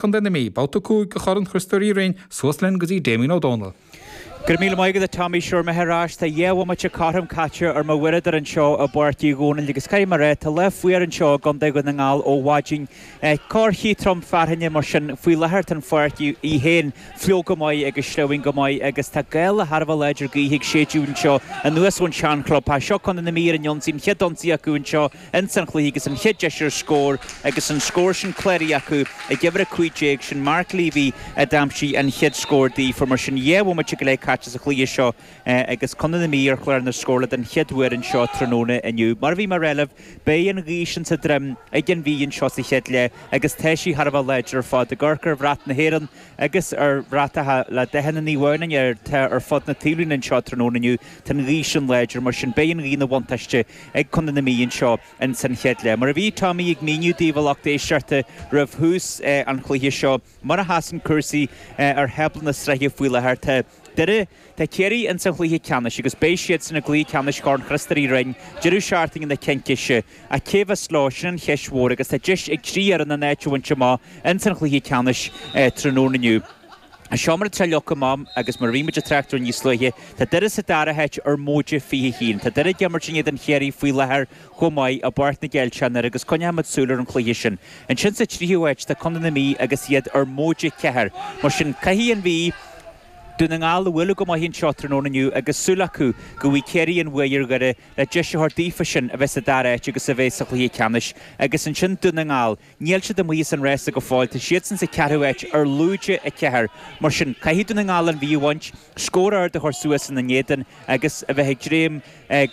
Co na Mí, babhta 5 de Chorn Chriostóir Uí Rinn, suas linn go dtí Damien Ó Dónaill. Go raibh míle maith agat a Tommy, sure, mé ar ais, tá dhá bhomaite cothrom caite ar mo uaireadóir anseo i bPáirc Uí Dhónaill agus caithfidh mé rá, tá lá fuar anseo i gContae Dhún na nGall ó mhaidin. corrchith trom fearthainne mar sin, faoi láthair tá an pháirc í féin fliuch go maith agus sleamhain go maith agus tá gála thar a bheith láidir gaoithe ag séideadh anseo anuas ón sean chlubtheach. Seo Co na Mí ar an ionsaí, an chéad ionsaí acu anseo, Ins an chluiche agus an chéad deis ar scór agus an scór sin cláraithe acu ag uimhir a cúig déag, sin Mark Leavy a d'aimsigh an chéad scór daofa. Mar sin dhá bhomaite go leith caite sa chluiche seo agus Contae na Mí ar chlár na scórála den chéad uair anseo tráthnóna inniu. Mar a bhí mé ag rá libh beidh an ghaoth sin sa droim ag an Mhí anseo sa chéad leath agus tá sí thar a bheith láidir ar fad. Ag amharc ar bhrat na hÉireann agus ar bhratacha eile de chuid Naomh Adhamhnáin atá ar fud na taobhlíne anseo tráthnóna inniu tá an ghaoth sin láidir, mar sin beidh an ghaoth ina bhuntáiste. ag contae na Mí anseo in san chéad leath. Mar a bhí Tommy ag míniú daoibh a lucht éisteachta roimh thús an chluiche seo, mar a sheasann cúrsaí ar thábla na sraithe faoi láthair, tá Doire, tá Ciarraí in san chluiche ceannais agus beidh siadsan i gcluiche ceannais Chorn Chriostóir Uí Rinn deireadh seachtaine na Cincíse. Ach cé bheas leo, sin an cheist mhór agus tá deis ag trí fhoireann an áit a bhaint amach in san chluiche ceannais tráthnóna inniu. Anseo mar atá leagtha amach agus mar a bhí muid ag trácht air níos luaithe, tá Doire sa dara háit ar móide fiche a haon. Tá Doire ag imirt in éadan Chiarraí faoi láthair chomh maith i bPáirc na gCeilteach i nDoire agus coinneoimid súil ar an chluiche sin. Ansin sa tríú háit tá contae na Mí agus iad ar móide ceathair. Mar sin caithfidh an Mhí, Dún na nGall a bhualadh go maith anseo tráthnóna inniu agus súil acu go bhfaighidh Ciarraí an bhuaidh ar Dhoire le deis a thabhairt daofasan a bheith sa dara háit agus a bheith sa chluiche ceannais agus ansin Dún na nGall Níl siad amuigh as an rása go fóill, tá siadsan sa cheathrú háit ar lúide a ceathair. Mar sin, caithfidh Dún na nGall an Mhí a bhaint, scór ard a chur suas ina n-éadan agus a bheith ag dréim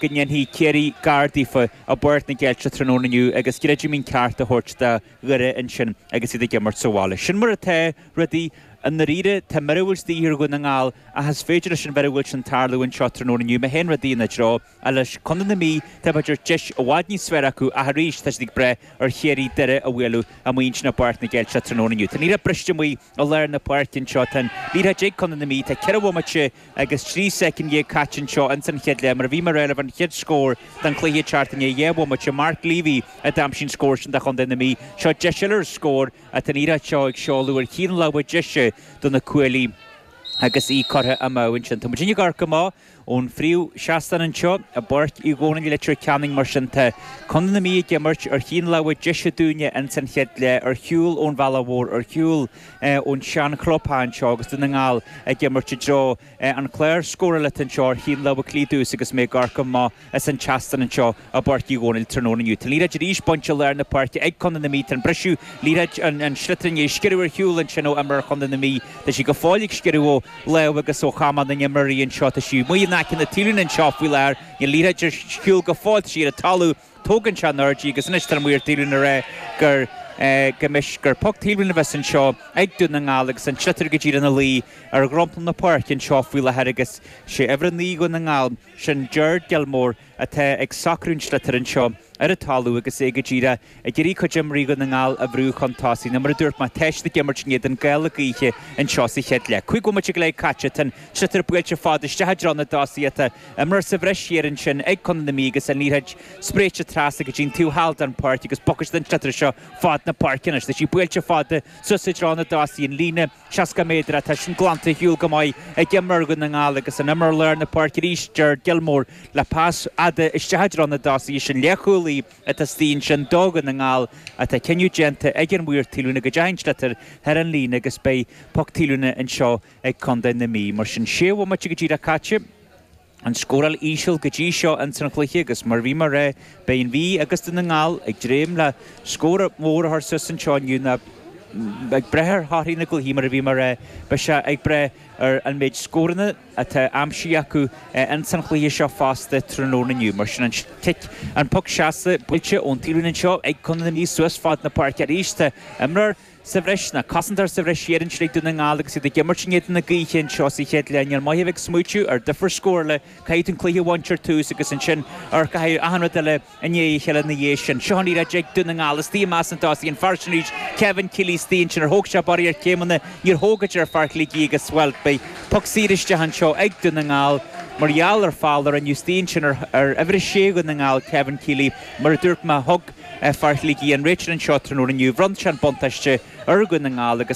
go ndéanfaidh Ciarraí gar daofa i bPáirc na gCeilteach tráthnóna inniu agus greidimín ceart a thabhairt do Dhoire ansin agus iad ag imirt sa bhaile. Sin mar atá rudaí i ndáiríre. Tá míorúilt de dhíth ar Dhún na nGall ach is féidir leis an mhíorúilt sin tarlú anseo tráthnóna inniu má théann rudaí ina dtreo. Ar leis Contae na Mí, tá b'fhéidir deis i bhfad níos fearr acu ach arís tá siad ag brath ar Chiarraí, Doire a bhualadh amuigh ansin i bPáirc na gCeilteach tráthnóna inniu. Tá an liathróid briste amuigh i lár na páirce anseo. Tá an liathróid ag Contae na Mí, tá ceithre bhomaite agus trí soicind dhéag caite anseo ins an chéad leath mar a bhí mé ag rá libh an chéad scór den chluiche ag teacht i ndiaidh dhá bhomaite. Mark Leavy a d'aimsigh an scór sin do Chontae na Mí. Seo deis eile ar scór ach tá an liathróid seo ag seoladh ar thaobh na láimhe deise do na cuaillí agus í curtha amú ansin. Tá muidinne ag amharc amach. Ón phríomhsheastán anseo i bPáirc Uí Dhónaill, Leitir Ceanainn, mar sin tá Contae na Mí ag imirt ar thaobh na láimhe deise dúinne ins an chéad leath, ar shiúl ón bhealach mhór, ar shiúl ón sean chlubtheach anseo agus Dún na nGall ag imirt i dtreo an chlár scórála atá anseo ar thaobh na láimhe clí domhsa agus mé ag amharc amach. Ins an tseastán anseo i bPáirc Uí Dhónaill tráthnóna inniu. Tá liathróid arís bainte i lár na páirce ag Contae na Mí. Tá an briseadh liathróid an sliotar i ndiaidh sciorradh ar shiúl ansin ó imreoir Chontae na Mí. Tá sí go fóill ag sciorradh ó lámh agus ó chamán na n-imreoirí anseo. Tá sí amuigh in aice na taobhlíne anseo faoi láthair. Níl liathróid ar shiúl go fóill. Tá sí ar an talamh. Tógann sé in airde í agus anois tá amuigh thar taobhlíne ar aghaidh gur go mbeidh gur poc taobhlíne a bheas anseo ag Dún na nGall agus an sliotar go díreach ina luí ar dhromchla na páirce anseo faoi láthair agus sé uimhir a naoi Dhún na nGall Sin Ger Gilmore atá ag socrú an sliotar anseo ar an talamh agus é go díreach ag iarraidh cuid d'imreoirí Dhún na nGall a bhrú chun tosaigh. Nó mar a dúirt mé, tá siad ag imirt in éadan gála gaoithe anseo sa chéad leath. Cúig bhomaite go leith caite, tá an sliotar buailte fada isteach i dtreo na dtosaithe. Tá imreoir sa bhreis thiar ansin ag Contae na Mí agus an liathróid spréite trasna go dtí an taobh thall den pháirc agus bogfaidh siad an sliotar seo fad na páirce anois. Tá sí buailte fada suas i dtreo na dtosaithe, an líne 60 méadar, tá sin glanta ar shiúl go maith ag imreoir Dhún na nGall agus an imreoir lár na páirce arís, Ger Gilmore, le pas fhada isteach i dtreo na dtosaithe. Is an leathchúlaí atá istigh ansin do Dhún na nGall ach tá cinneadh déanta ag an mhaor taobhlíne go dteachaidh an sliotar thar an líne agus beidh poc taobhlíne anseo ag Contae na Mí. Mar sin 6 bhomaite go díreach caite. an scóráil íseal go dtí seo ins an chluiche agus mar a bhí mé a rá, beidh an Mhí agus Dún na nGall ag dréim le scór mór a chur suas anseo inniu nó ag brath ar thorthaí na gcluichí. Mar a bhí mé a rá, beidh sé ag brath ar an méid scóranna atá aimsithe acu ins an chluiche seo fosta tráthnóna inniu. Mar sin, an cic, an poc seasta buailte ón taobhlíne anseo ag Contae na Mí suas fad na páirce arís. Tá imreoir. sa bhreis nó cosantóir sa bhreis thiar ansin ag Dún na nGall agus iad ag imirt in éadan na gaoithe anseo sa chéad leath Níl maith a bheith ag smaoitiú ar difear scórála caithfidh tú an cluiche a bhaint ar tús agus ansin rachaidh achan rud eile i ndiaidh a chéile ina dhiaidh sin Seo an liathróid ag Dún na nGall istigh i measc na dtosaithe an fear sin arís Kevin Kealy istigh ansin ar thóg sé barraíocht céimeanna Níor thóg a deir fear Shligigh agus bhuel beidh poc saor isteach anseo ag Dún na nGall mar gheall ar foul a rinneadh istigh ansin ar uimhir a sé Dhún na nGall Kevin Kealy Mar a dúirt mé thug Fear Shligigh an réiteoir anseo tráthnóna inniu. Bhronn sé an buntáiste ar Dhún na nGall agus.